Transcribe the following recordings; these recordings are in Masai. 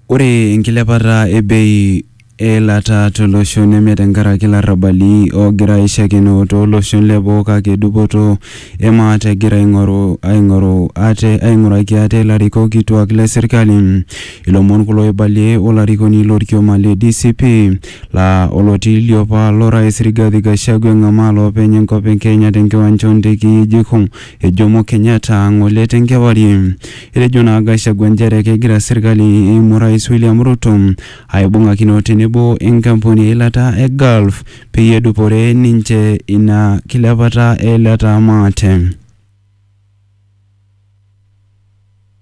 Ore enkilepata e bei e ilata to losho neme tenkaraki ilarrabali oogira aishakino too loshon le boo kake dupoto e maate egira aing'oru aing'oru ate aing'uraki ate ilarikok kituak le serkali. Ilomon kulo oibalie olarikoni lo lkioma le DCP laa olotii liopa lo rais Rigathi Gachagua eng'amaa loopeny enkop e Kenya te nkiwanja oo ntekei e JKUM Ejomo Kenyatta ng'ole te nkewarie. Etejo naa Gachagua nchere kegira serkali eimu Orais William Ruto aibung'akino tenebo enkampuni eilata e Gulf peyie edupore ninche ina kilepata eilata maate.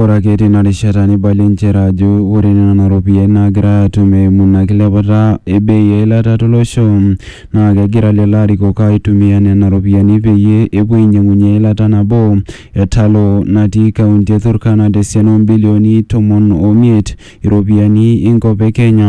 Ore ake teina rishata neibalie nchere ajo ore nena ropiyiani naagirai aatum eimu ina kilepata e bei e ilata tolosho naa kegira lelo arikok aaitumia nena ropiyiani peyie epuo ainyiang'unyie eilata nabo e Talo natii kaunti e Turkana tesiana oo mbilioni tomon o miet iropiyiani enkop e Kenya.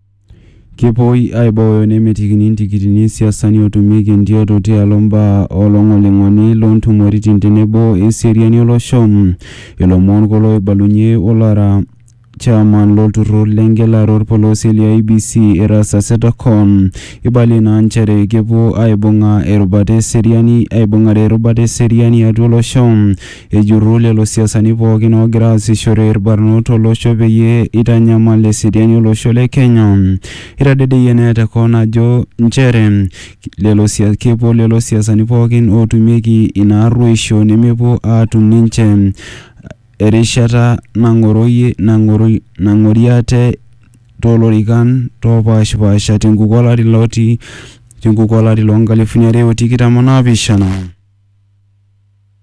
Kepuoi aibooyo nemetikini intikitini isiasani otumieki entioto tialo mbaa olongolingoni lontumoritin tenebo eseriani olosho. Ilomon kulo oibalunye olara chairman lolturur lengelare olpolosie le IEBC Erastus Ethekon. Ibalie naa nchere kepuo aibunga erubata eseriani aibungare erubata eseriani atua olosho. Ejurru lelo siasani pookin oogira aasishore ilbarnot to losho peyie eitanyamal eseriani o losho le Kenya. Eitadedeyie neya te koon ajo nchere lelo sias kepuo lelo siasani pookin ootumieki ina arruoisho nemepuo aatum ninche erishata nang'oroyie nang'oro nang'orie ate too lorikan oopaashipaasha te nkuku o lari loti te nkuku o lari loo nkalifuni are o tikitam o naapishana.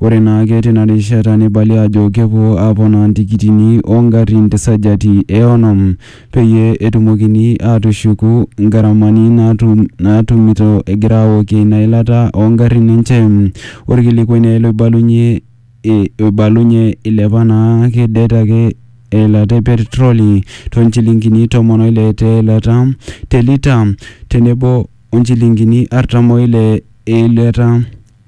Ore naake tina rishata neibali aajo kepuo aaponaa ntikitini oo ngarrin te sajati e onom peyie etumokini aatushuku ngaramani naatumito egira aaokie ina ilata oo ngarrin enche. Olkilikuai naai loibalunye oibalunye eilepa naake det ake eilata e petroli too nchilingini tomon o ile te ilata te lita tenebo o nchilingini artam o ile e ilata.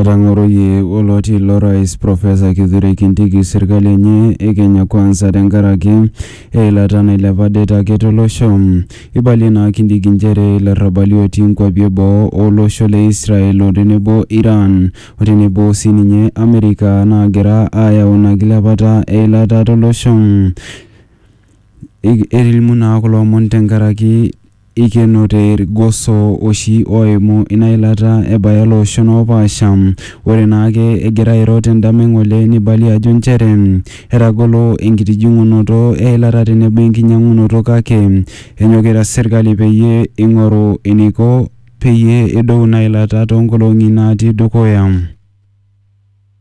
Etang'oroyie oloti ilo rais Profesa Kithure Kindiki serkali enye e Kenya Kwanza tenkaraki eilata nailepa det ake tolosho. Eibalie naa Kindiki nchere ilarrabali otii nkwapi e boo o losho le Israel o tenebo Iran o tenebo sii ninye Amerika naagira aayau ina kilepata eilata tolosho. Etilimu naa kulo omon tenkaraki Eikenote ilgoso oshi ooimu ina ilata ebaya ilooshon oopaasha. Ore naa ake egira airo te ndama e ng'ole neibalie ajo nchere etagolo enkitijing'unoto e ilata tenebo enkinyang'unoto kake enyokita serkali peyie eing'oru eneiko peyie edou ina ilata too nkolong'i naatii dukuya.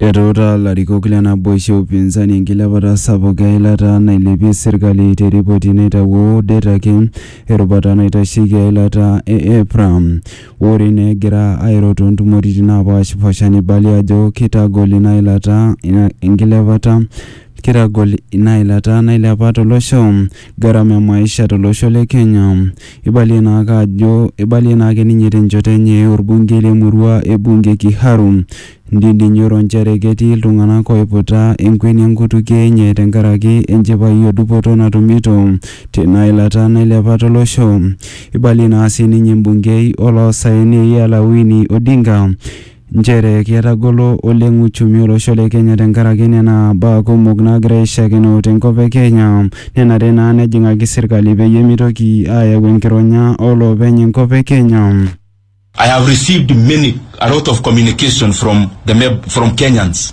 Etuutaa ilarikok le naboisho e upinzani enkilepata sapuk e ilata nailepie serkali te ripoti naitawuo det ake erubata naitasheki eilata e EPRA. Ore ina egira airo too ntumoritin naapashipasha neibalie ajo keitagol ina ilata enkilepata Kitagol ina ilata nailepa to losho, garama e maisha to losho le Kenya. Eibalie naa ake ajo eibalie naa ake ninye te nchoto enye olbungei le murua e Bunge Kiharu Ndindi Nyoro nchere ketii iltunganak oiputa enkueni enkutukie enye tenkaraki enchipai o dupoto natumito teina ilata nailepa to losho. Eibalie naa sii ninye embungei o loosaen Eyala Winnie Odinga Nchere ketagolo oleng uchumi olosho le Kenya tenkaraki nena baa kumok naagira aishiakino tenkop e Kenya. Nenare naa nejing'aki serkali peyie meitoki aayau enkironya oo loopeny enkop e Kenya. I have received many, a lot of communication from the from Kenyans.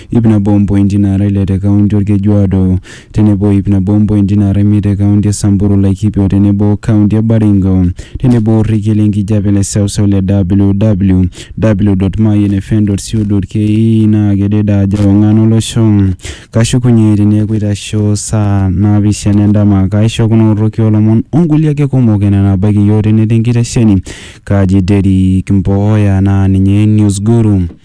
iip nabo ompointi naara ile te kaunti Olkejuado tenebo o iip nabo ompointi naara imiet te kaunti e Samburu, Laikipia o tenebo o kaunti e Baringo tenebo o rrekie le nkijape le seuseu le www.mayianfm.co.ke naa kedede ajo ewang'an o losho. Kashukunye teneeku eitasho saa naapishana e ndama. Kaaisho kuna orroki oo lomon o nkulie ake kumok enaa naabaiki iyiook tene te nkitesheni Kaji Derrick Mboya naa ninye News Guru.